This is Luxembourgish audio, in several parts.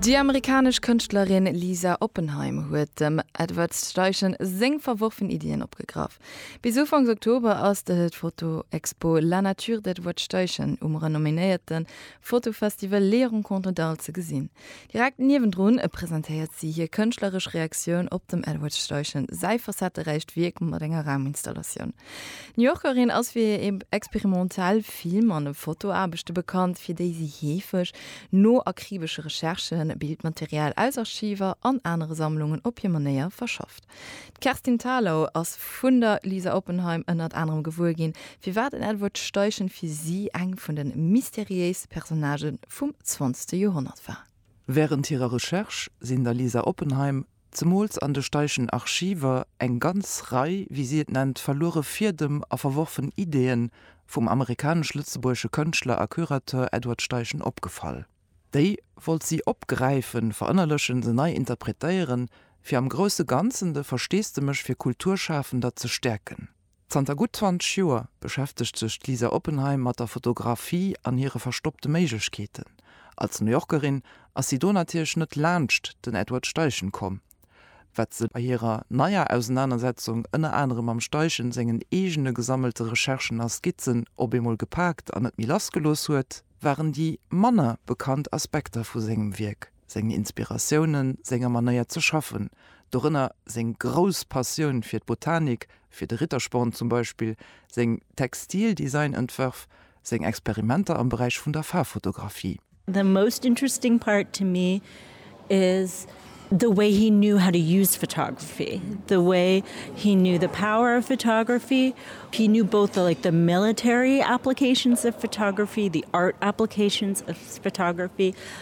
Déi amerikanesch Kënschtlerin Lisa Oppenheim huet dem Edward Steichen seng verworfen Iddien opgegraff. Bis Ufanks Oktober ass de d'Fotoexpo La nature d'Edward Steichen um renomméierte Fotofestival Les Rencontres d'Arles ze gesinn. Direkt niewendrun presentéiert si hir kënschtleresch Reaktioun op dem Edward Steichen säi facetteräicht Wierk mat enger Rauminstallatioun. D'New Yorkerin ass fir hir experimentell Film an Fotoaarbechte bekannt, fir déi si heefeg no akribesche Recherchen Bildmaterial aus Archiver an anere Sammlungen op hir Manéier verschafft. D'Kerstin Thalau ass vun der Lisa Oppenheim ënnert anerem gewuer ginn, firwat en Edward Steichen fir si eng vun de mysteriéiste Personnagë vum zwanzegste Joerhonnert war. Wärend hirer Recherche sinn der Lisa Oppenheim zemools an de Steichen Archiver, eng ganz Rei, wéi si et nennt, verluere Fiedem a verworfen Ideeën vum amerikanesch-lëtzebuergesche Kënschtler a Curateur Edward Steichen opgefall. Déi wollt si opgräifen, verënnerlechen, se nei interpretéieren, fir am grousse Ganzen de Versteesdemech fir Kulturschafender ze stäerken. Zanter gutt 20 Joer beschäftegt sech d'Lisa Oppenheim mat der Fotografie an hire verstoppte Méiglechkeeten. Als New Yorkerin ass si do natierlech net laanscht den Edward Steichen komm. Wat se bei hirer neier Ausenanersetzung ënner anerem mam Steichen sengen eegene gesammelte Recherchen a Skizzen op eemol gepaakt an net méi lassgelooss huet, waren déi manner bekannt Aspekter vu sengem Wierk. seng Inspiratiounen, senger Manéier ze schaffen, dorënner seng grouss Passioun fir d'Botanik, fir de Rittersporn zum Beispill, seng Textildesign-Entwërf, seng Experimenter am Beräich vun der Faarffotografie. The most interesting part to me is the way he knew how to use photography, the way he knew the power of photography, he knew both the like the military applications of photography, the art applications of photography,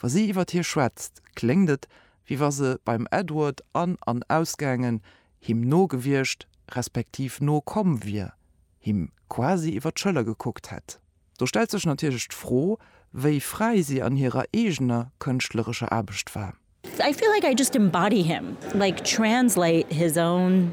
Wa si iwwer hie schwätzt, kléngt et, wéi wa se beim Edward an an ausgaangen, him no gewiescht, respektiv no komm wier, him quasi iwwer d'Schëller gekuckt hätt. Do stellt sech natierlech d'Fro, wéi fräi si an hirer eegener kënschtlerescher Aarbecht war. I feel like I just embody him, like translate his own.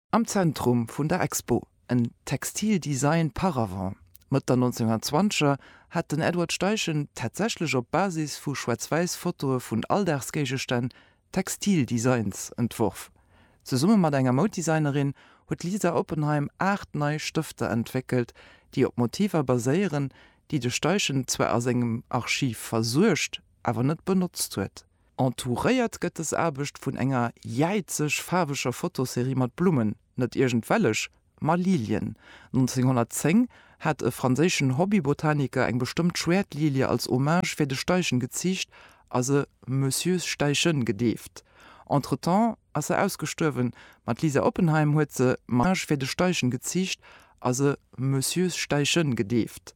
Am Zentrum vun der Expo, en Textile Design par avant. Mëtt der 1920er hat den Edward Steichen tatsächlech op Basis vu schwaarz-wäiss Fotoe vun Alldagsgéigestänn Textile Designs entworf. Zesumme mat enger Mouddesignerin huet d'Lisa Oppenheim aacht nei Stëfter entwéckelt, déi op Motiver baséieren, déi de Steichen zwar a sengem Archiv versuergt, awer net benotzt huet. Entouréiert gëtt dës Aarbecht vun enger jäizeg faarweger Fotoserie mat Blummen, net iergendwellech, ma Lilien. 1910 hat e franséischen Hobbybotaniker eng bestëmmt Schwäertlilie als Hommage fir de Steichen geziicht a se Monsieur Steichen gedeeft. Entretemps ass se ausgestuerwen, ma d'Lisa Oppenheim huet se Hommage fir de Steichen geziicht a se Monsieur Steichen gedeeft.